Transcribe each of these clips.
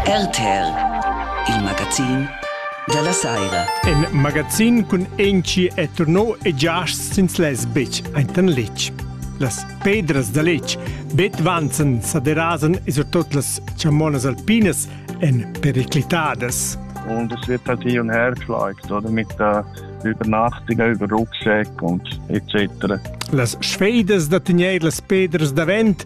RTL, il magazin dalla saira. In magazin cun enci e turno e giasts sins les bitsch aintan litg. Las pedras da litg bet vanzan saderasan e surtot las chamonas alpinas en periclitadas. Und es wird natürlich ein Herzschlag, oder mit der Übernachtung über Rucksäcke und etc. Las sfeidas da tegnair las pedras davent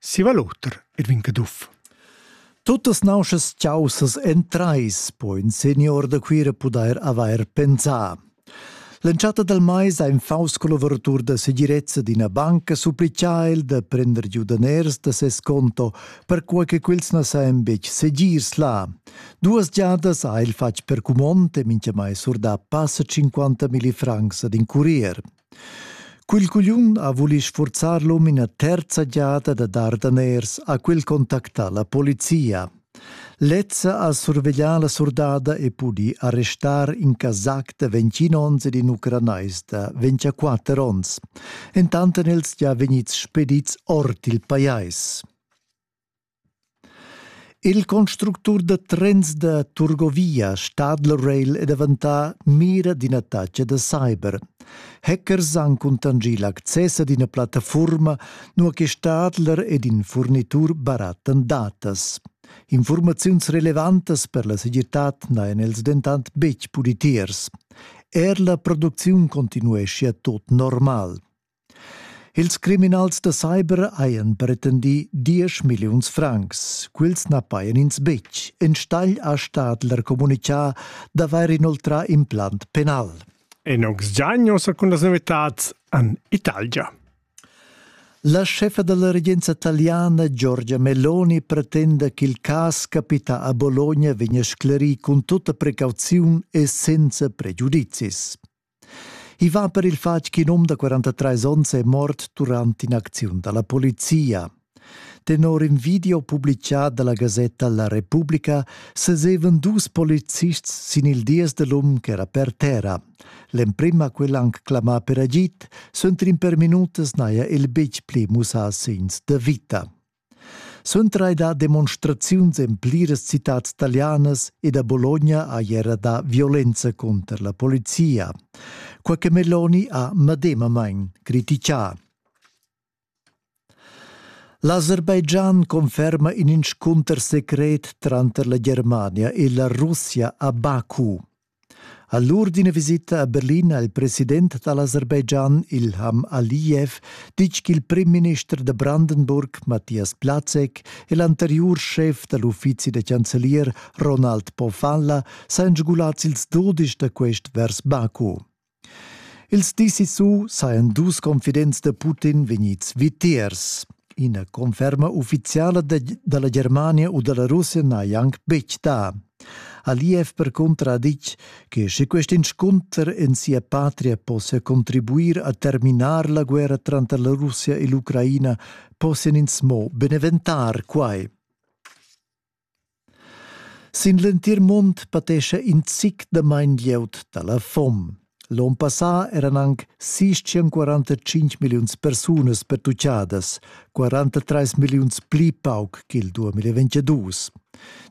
Siva l'oter er vin caduff. Tuttas nauschas chaussas en trais po in senior da Cuira pudair avair pensà. L'entschatta dal mais ha in faus collaboratur da segirezza d'ina banca supplicà el da prender giu daners da ses conto, perquai che quels na sajan betg segirs là. Duas giadas ha el fatg per cumond e mintgamai surdà passa 50 milli francs ad in curier. Quel cugliun ha vuli sfurzar l'um ina terza giada da dar daners, ha quel contactà la polizia. Lezza ha surveglià la surdada e pudì arrestar in Kazak da 21 onns ed in Ucranais da 24 onns, entant èn els gia vegnids spedids ord il pajais. Il constructur da trens da Turgovia Stadlrail è daventà mira d'ina taxa da cyber. Hackers han cuntanschì l'access ad ina plattafurma, nua che Stadler ed in furnitur barattan datas. Informaziuns relevantas per la segirtad n'hajan els dentant betg pudì tiers. Er la producziun continueschia tot normal. Ils criminals da cyber hajan pretendì diesch milliuns francs. Quels na pajan ins betg. Enstagl ha Stadler communitgà d'avair inoltrà implant penal. En august giagno secund las novitads en Italia. La chefa della regenza italiana Giorgia Meloni pretenda ch'il cas capita a Bologna vegna sclerì cun tutta precauziun e senza pregiudizis. I va per il fatg ch'in um da 43 onns è mort durant in'acziun da la polizia. Tenor in video publicà da la gasetta La Repubblica sesevan dus polizists sin il dies da l'um ch'era per terra. L'emprim ha quel anc clamà per agid, suenter in per minutas n'haja el betg pli mussà segns da vita. Suntrai da demonstraziuns en pliras citads talianas e da Bologna ha era dà violenza cunter la polizia. Qua che Meloni ha medemamain critichà. L'Aserbaidschan conferma in inscunter secret tranter la Germania e la Russia a Baku. A l'ur d'ina visita a Berlin ha il president da l'Aserbaidschan, Ilham Aliyev, ditg ch'il primminister da Brandenburg, Matthias Plazek, e l'anteriur schef da l'uffizi da chancelier, Ronald Pofanla, sajan sgulads ils dudisch da quest vers Baku. Ils dis sissu sajan dus confidents da Putin vegnids vitiers. Ina conferma uffiziala da la Germania u da la Russia n'haja anc betg dà. Aliyev percunter ha ditg che sche quest inscunter en sia patria possia contribuir a terminar la guerra tranter la Russia e l'Ucraina, possian ins mo beneventar quai. Sin l'entir mund patescha in zic damain glieud da la fom. L'onn passà eran anc 645 milliuns persunas pertutgadas, 43 milliuns pli pauc ch'il 2022.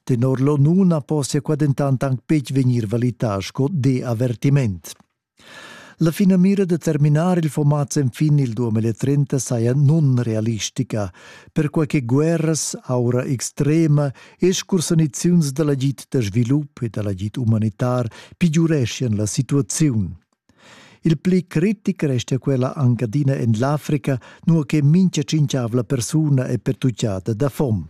Tenor l'ONU na possia qua dentant anc betg vegnir valità sco deavertiment. La finamira da terminar il format sen fin il 2030 saja nunrealistica, perquai che guerras, aura extrema e scursaniziuns da l'agid da svilup e da l'agid umanitar pigiureschian la situaziun. Il pli critic restia quella anche adina en l'Africa, nua che mincha cinciavla persuna è pertucciata da fom.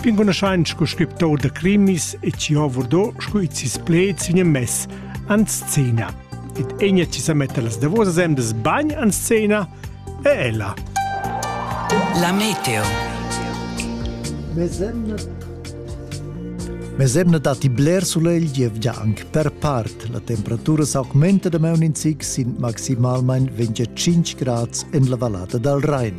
Pingunoschain scu scriptor da crimis e ci ho vurdo scu it sis pleds in mess an scena. Ed egna ci sa metta las davosas emdas bagn an scena e ella. La meteo. Mesemne dat die bler sulegl gievgia anche per part. La temperatura s'augmenta da meun in zic sin maximalmain 25 grads en la vallata dal Rhein.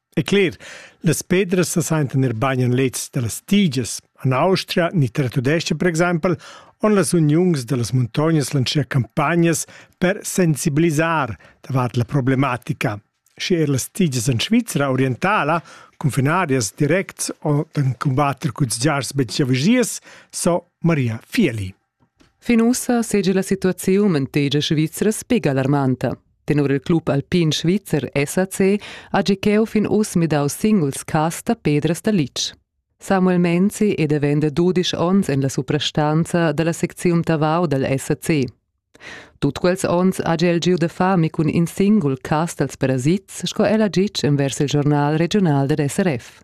E cler, las pedras sa saintan er bain en lezs da las tigias. En Austria, ni Tratudescha per exempel, on las uniuns da las muntognas lancier campagnas per sensibilisar davart la problematica. Sche er las tigias en Svizra orientala, confinarias directs o den combatter cuts giars betg giavigias, so Maria Fieli. Fin ussa seigi la situaziun en tegia svizra sbig alarmanta. Tenor il club alpin svizzer SAC hagi cheu fin uss midau singuls cass da pedras da litg. Samuel Menzi è davent da dudisch onns en la suprastanza dalla secziun Tavau dal SAC. Tut quels onns ha el giu da fami cun in singul cas dals parasits, sco el ha ditg envers il giornal regional dad SRF.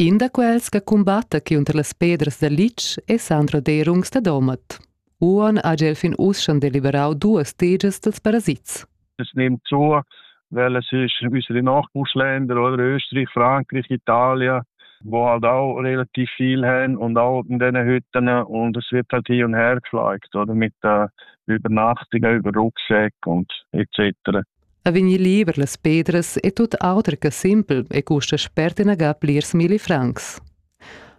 In da quels che cumbatta cunter las pedras da litg è Sandro Derungs da Domat. Uon ha el fin uss deliberau duas tegias dels parasits. Es nimmt zu, weil es ist unsere Nachbarländer, oder Österreich, Frankreich, Italien, wo halt auch relativ viel haben und auch in diesen Hütten und es wird halt hin und her geschlagen, oder mit äh, Übernachtungen über Rucksäcke und etc. a vegnir liber las pedras e tut auter che simpel e custa spert inaga plirs milli francs.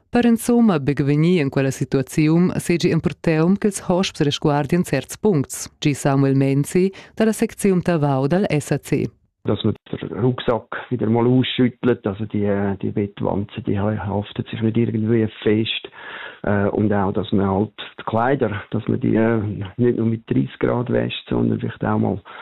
Per insumma bevegnir in quella situaziun segi empurteum ch'ils hosps resguardien certs puncts, gi Samuel Menzi dalla secziun Tavau dal SAC. dass man den Rucksack wieder mal ausschüttelt, also die, äh, die Bettwanzen, die haften sich nicht irgendwie fest äh, und auch, dass man halt die Kleider, dass man die äh, nicht nur mit 30 Grad wäscht, sondern vielleicht auch mal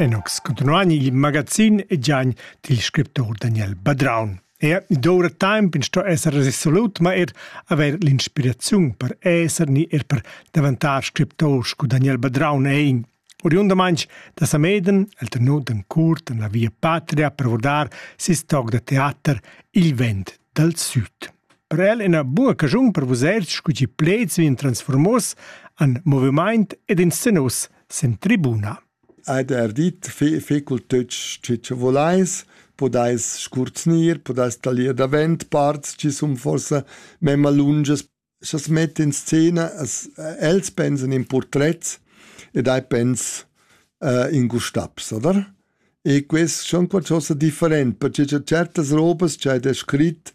Enox continuan il magazin e giagn dil scriptor Daniel Badraun. Er ni doura temp in sto esser resolut, ma er haver l'inspiraziun per esser ni er per davantar scriptor scu Daniel Badraun ein. Oriundamaintg da Sameden el ternut en curt en la via patria per vurdar ses toc da teater Il vent dal süd. Per el ina buca caschun per vusers scu chi pleds vegn transformos en movimaint ed in scenos sen tribuna. Ed er dit fecul tüt chi che volais, podais scurznir, podais talir davent parts chi sun forse memma lunges scha's metta in scena as els pensan in purtrets ed hai pens uh, in Gustavs, oder? E quest schon qualcosa different, perché cha certas robas cha ed è scrit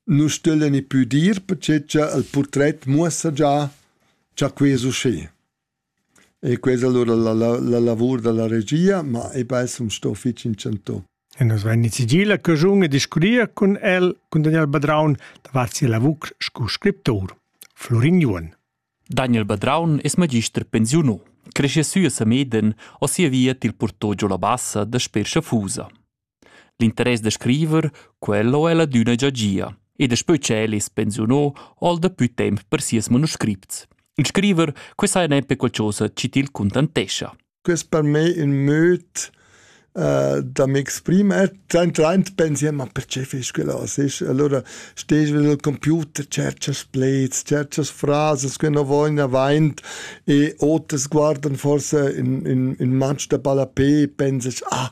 nu stüglen i pü dir, perché cha il purtret muossa già cha que's usché. E quella allura la la lavur dalla regia, ma ei bessen sto fetg inchantau. E nus vein nizigì la caschun e discurrir cun el, cun Daniel Badraun, davart sia lavur sco scriptur. Florin Juon. Daniel Badraun es magister pensiuno. Cresce sü a Sameden, o sia via til portò giò la bassa da Sper Schafusa. L'interess da scriver, quel ho el adüna già gia, e daspö tschel es pensiuno ol dapü temp per sieus manuscripts. Il scriver quest haja nempe qualchosa chi til cuntantescha. Quest per me ün möd uh, da m'exprimer. Traint pensi, ma perché fais quella così? Allora stehst al computer, cerchas pleds, cerchas frases che non vogliono avanti e oters guardano forse in, in, in manch da ballapé e pensas, ah,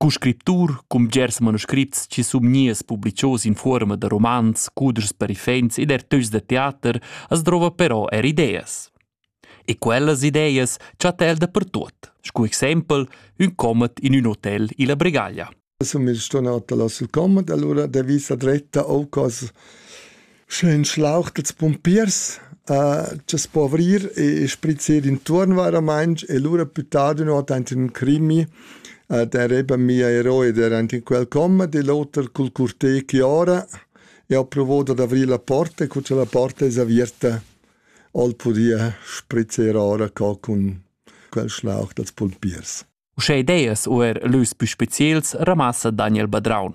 Cu scriptur cun bgers manuscrits chi sun gnius publichos in fuorma da romans, cuders parifens ed ertüchs da teater as drouva però eir ideas. E quellas ideas chatta el dapertuot, scu exaimpel ün comet in ün hotel illa Bregaglia. Sun mez sturnà da las comet, allura da vista dretta o cos Sch'eu inschlauch dals pumpiers a cha's po avrir e sprizzir intuorn vairamaing e lura più tard ün ot aint ün crimi der eben mia eroe der aint in quel com, di l'oter cul curté chi ora e ho pruvà dad avrir la porta e cu cha la porta es avierta hol pudìa sprizzer ora co cun quel schlauch dals pumpiers. Uschè ideas u er lös pü speziels ramassa Daniel Badraun.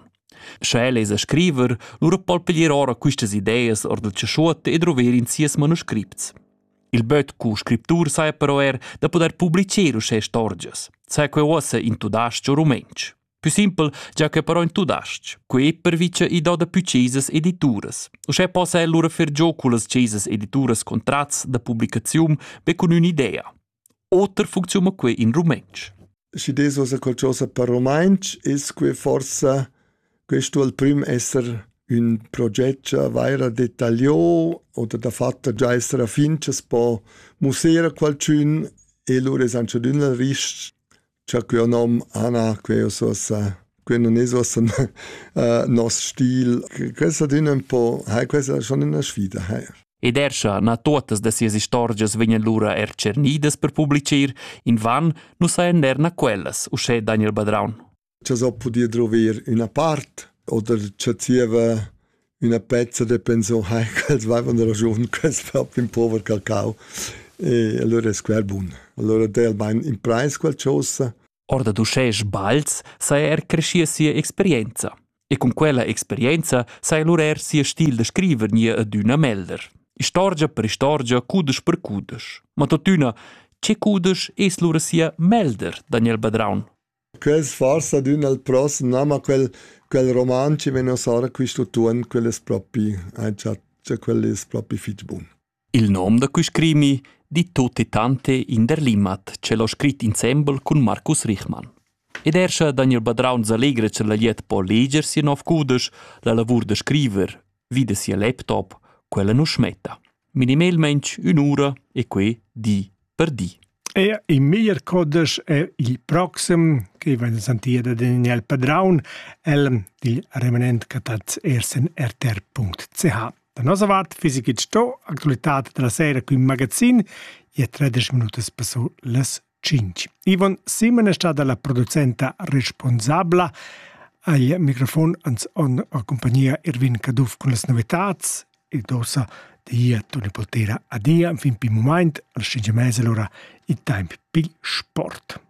Sche el es a scriver, lura po'l piglier ora quistas ideas or dal chaschuot e druver in sias manuscripts. Il böt cu scriptur saja però er da pudair publicher uschè istorgias, sai que uossa in tudasch o rumentsch. Pü simpel già che però in tudasch, que pervicha i do da pü chesas edituras. Uschè possa el lura fer gio cullas chesas edituras contrats da publicaziun be cun ün'idea. Oter funcziuna quei in rumentsch. Schi des osa qualchosa per rumantsch, es que forsa questo al prim esser ün proget vaira detagliò oder dafatta già esser a fin cha's po mussar a qualchün e lura es aunch'adüna rich cha quio nom Anna, queo sosa, que nun es uossa uh, nos stil. Questa adüna ün po, hai questa schon üna sfida, hai. Ed er scha na tuottas da sias istorgias vegnan lura er tschernidas per publicir, invan nu sajan er na quellas, uschè Daniel Badraun. Cha so pudia druver üna part oder cha zieva üna pezza de pensum hai ch'els vaivan da ragiun quels fap in pover cacao e allora es quel bun. Allora dà el bain in preis quel chosa. Or da uschè sbals saja er creschia sia experienza. E cun quella experienza saja lur er sia stil da scriver nia adüna melder. Istorgia per istorgia, cudesch per cudesch. Ma totüna, che cudesch es lura sia melder, Daniel Badraun? Quel sfarz adüna il prossem na, ma quel quel roman chi vegna sara quist'utuon, quel es propi aint cha quel es propi fich bun. Il nom da quist crimi di tutti tante in der Limmat, ch'el ho scrit insembel cun Marcus Richmann. Ed er scha Daniel Badraun s'allegra ch'el ha liet po leger sia nov cudesch, la lavur da scriver, vide sia laptop, quella nu smetta. minimelmaing ün'ura e quai di per di. E il meglier codesch è il proxim, che va in santira da Daniel Padraun, el dil remanent catats ersen rtr.ch. Da nossa vart fisic sto actualitat della sera qui magazin, e 13 minutas passo las 5. Ivan Simon è stata la producenta responsabla. Al microfon ans on a compagnia Irvin Caduff con las novetats ed ossa di Toni Poltera adia fin pi moment al sciengia mese l'ora il temp pi sport.